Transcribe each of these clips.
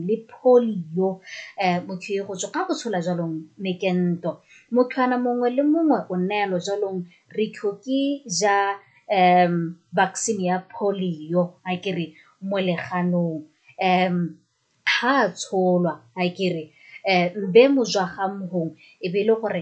le polio um motho e go tswa ka go tshola jalong mekento mothwana mongwe le mongwe o neelo jalong re tlhoke ja um vaccine ya polio a ke re mo leganong um ha a tsholwa a ke re um mbe mojwa ga mhong e be e le gore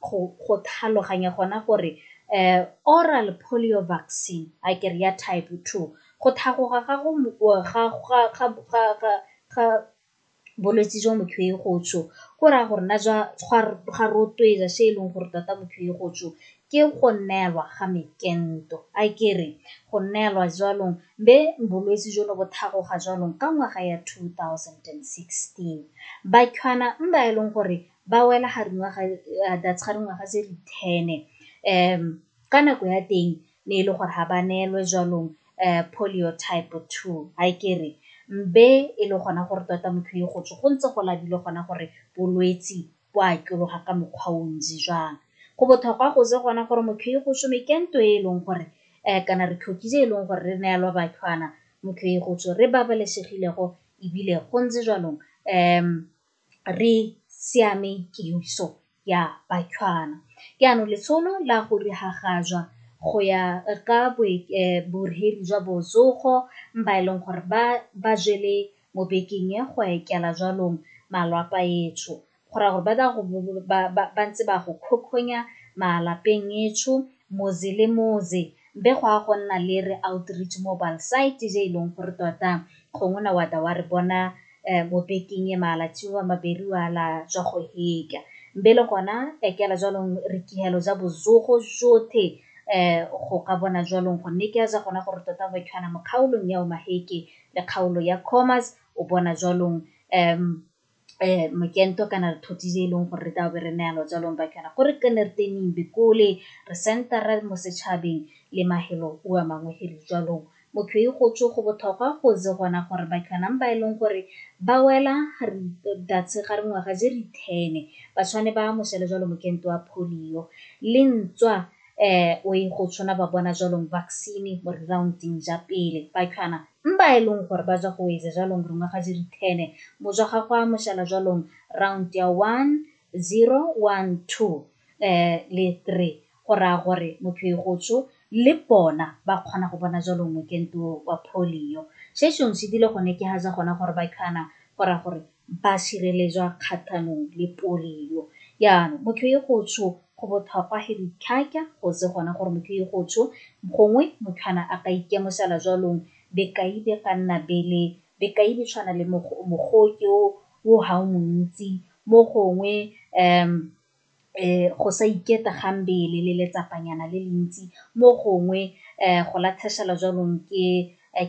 go tlhaloganya gona gore oral polio vaccine a kere ya type two go tlhagoga ga bolwetse jwa motho e go tso go raya gore nna jwa ga rotloetsa se e leng gore tota motho e go tso ke go neelwa ga mekento a kere go neelwa jwanong be bolwetse jo no bo tlhagoga jwanong ka ngwaga ya two thousand and sixteen ba e leng gore ba wela ga dingwaga that's ga dingwaga tse di ten ka nako ya teng ne e le gore ga ba neelwe jwalong um polio type two ha ke re mbe e le gona gore tota motho e go tswe go ntse go labile gona gore bolwetsi bo a atologa ka mokgwa o ntsi jang go botlhokwa go se gona gore motho e go some ke nto e e leng gore um kana re tlhoki tse e leng gore re neelwa batlhwana motho e go tswe re babalesegilego ebile go ntse jwalong um re siame kemiso ya Batlhwana. Jaanong letsholo la go diragajwa go ya ka borheli jwa botsogo ba e leng gore ba jele mo bekeng e go etela jwalong malwapa etsho go raya gore ba tla go ba ntse ba go kgokgonya malapeng etsho motse le motse. Be go a go nna le re Outreach Mobile Site je e leng gore tota gongwe na wa ta wa re bona mo bekeng e maalatsiwa maberi wa la jwa go heka. Be le gona ekela jwalong re kihelo ja bozogo jothe go ka bona jwalong go nne ke a ja gona gore tota go ekhana mo kgaolong ya Omaheke le kgaolo ya Khomas o bona jwalong mokento kana re thothi e leng gore re tla be re naya lojalong ba kana gore ke ne re teneng bikole re sentara mo setšhabeng le mahelo o a mangwe helo jalong motho e go tswe go botlhokwa go ze gona gore ba kanang ba e leng gore ba wela datse ga re ngwaga je re ten ba tshwane ba mošele jalo mokento wa polio le ntswa um o e go tshwana ba bona jalong vaccine mo re round-eng ja pele ba kana Mba e leng gore ba jwa go weze jwalong rongwa ga jiri thene, mojwa ga gwa moshala jwalong round ya one, zero, one, two, eh, le three. Go raya gore motho e go tsho, le bona ba kgona go bona jwalong mokento wa polio. Se shong se dile gone ke ha ja gona gore ba khana go raya gore ba sireletswa kgatlhanong le polio. Jaanong motho e go tsho go botlhokwa he ditlhaka go tse gona gore motho e go tsho gongwe motho ana a ka ikemosela jwalong bekai be ka nna bele bekai be tshwana le mogoke o ga o montsi mo gongwe . go sa iketla ga mmele le letsapanyana le le ntsi mo gongwe go latlhegelwa jaanong ke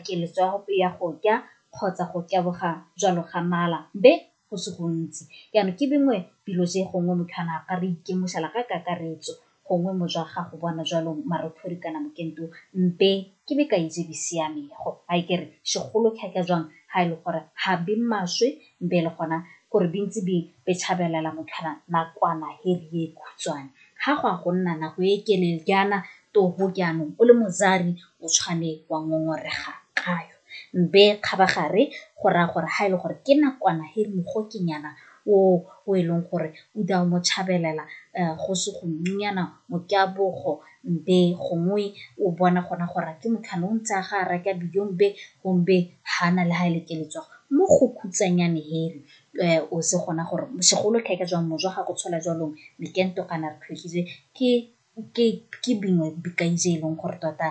keletso ya go ja kgotsa go taboga jalo ga mala be go se gontsi jaana ke dingwe dilo tse gongwe motho a na a ka re itemogela ka kakaretso gongwe mo jwa gago bona jalo marothodi kana mokento mpe ke be ka itse di siamego a e kere segolo thata jang ha e le gore ga be maswe Mpe e le gona gore di ntse di petshabelela motlhana nakwana he ri e khutshwane. Ha go a go nna nako e kelele jaana toho jaanong o le mozari o tshwane wa ngongorega kayo. Mpe kgabagare go raya gore ha e le gore ke nakwana he ri mogokenyana o o e leng gore o da o mo tshabelela go se go nnyana mokabogo Mbe gongwe o bona gona gore ke motho ane o ntse a ga a reka bidio mbe gombe ha na le ha e le ke letswa mo go khutsanyane here o se gona gore segolo ka ka jwang mojwa ga go tshola jwalong mekento kana re tlhotlhile ke ke ke bingwe bikae je e leng gore tota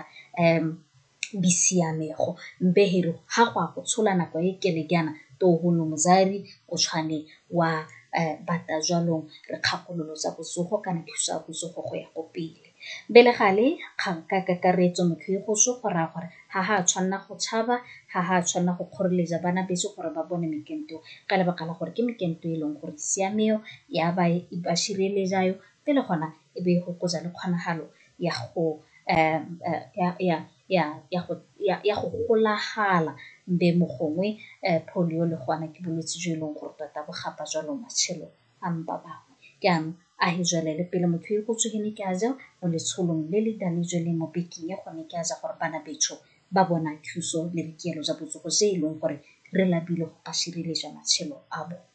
bisiamego mpeheri ha gwa go tshola nako e kelekeana tohono mozari o tshwane wa um bata jwalong re kgakololo tsa bosogo kana thuso ya bosogo go ya go pele bele gale kgang ka kakaretso motho e go so go raya gore ga ga tshwanela go tshaba ga ga tshwanela go kgoreletsa bana beso gore ba bone mekento ka lebaka la gore ke mekento e leng gore siameo ya ba e ba šireletsayo pele gona e be e gokotsa le kgonagalo ya go ya go golagala be mo gongwe polio le gona ke bolwetse jo e leng gore tota bo gapa jalo matshelo a mpa bangwe ke yanong a he jwalele pele motho e go tsogene ke a ja mo letsholong le le dane jo le mo bekeng ya gone ke a ja gore bana betsho ba bona thuso le boikuelo jwa botsogo se e leng gore re lapile go ka sireletsa matshelo a bone.